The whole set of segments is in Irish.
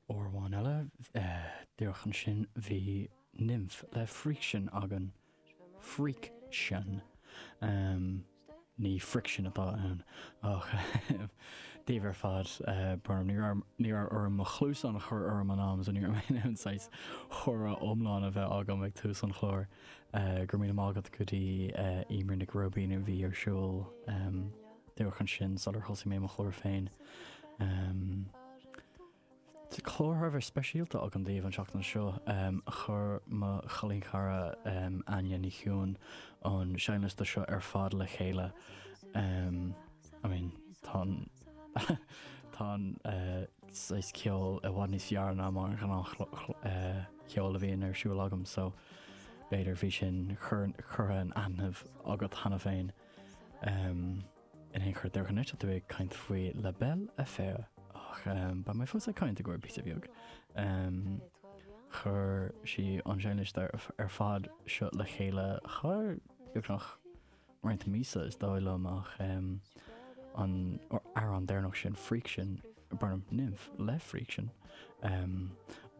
Uair amháin eile, díreach ansin, bhí Nimh le Friction againn. Friction. Ní friction atá ann. Ach daoibh ar fad, Burnham, ní raibh, ní raibh orm mo chluasáin a chur orm an am so ní raibh mé in ann saghas comhrá iomlán a bheith agam ag tús an chláir. Go raibh míle maith agat go dtí Emer Nic Róibín a bhí ar siúl. Díreach ansin sular thosaigh mé mo chlár féin. Tá clár thar a bheith speisialta agam daoibh an tseachtain seo. Chuir mo chailín cara Áine Ní Chiuan an seinnliosta seo ar fad le chéile. I mean tá an tá an saghas ceol i bhfad níos fearr ná mar an ghnáth cheol a bhíonn ar siúl agam so b'fhéidir bhí sin curtha in aithne agat cheana féin. In aon chor déarfaidh anois tú ag caint faoi La Belle et Faire ach beidh mé fós ag caint i gcomhair píosa bheag. Chuir sí an seinnliosta ar fad seo le chéile thar beagnach roinnt míosa is dóigh liom ach an amhrán deireanach sin Friction, Nimh le Friction.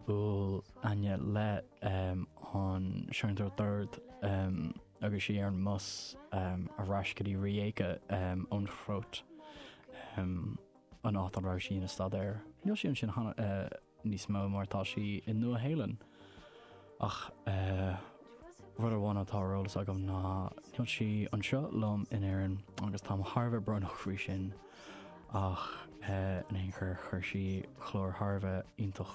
Bhuail Áine le an seanadóir Dord. agus í ar an mbus ar ais go dtí Rijeka sa Chróit, an áit a raibh sí ina staidéar. Níl sí ansin níos mó mar tá sí i Nua-Shéalainn. Ach rud amháin atá ar eolas agam ná níl sí anseo liom in Éirinn agus táim thar a bheith brónach faoi sin ach in aon chor chuir sí clár thar a bheith iontach.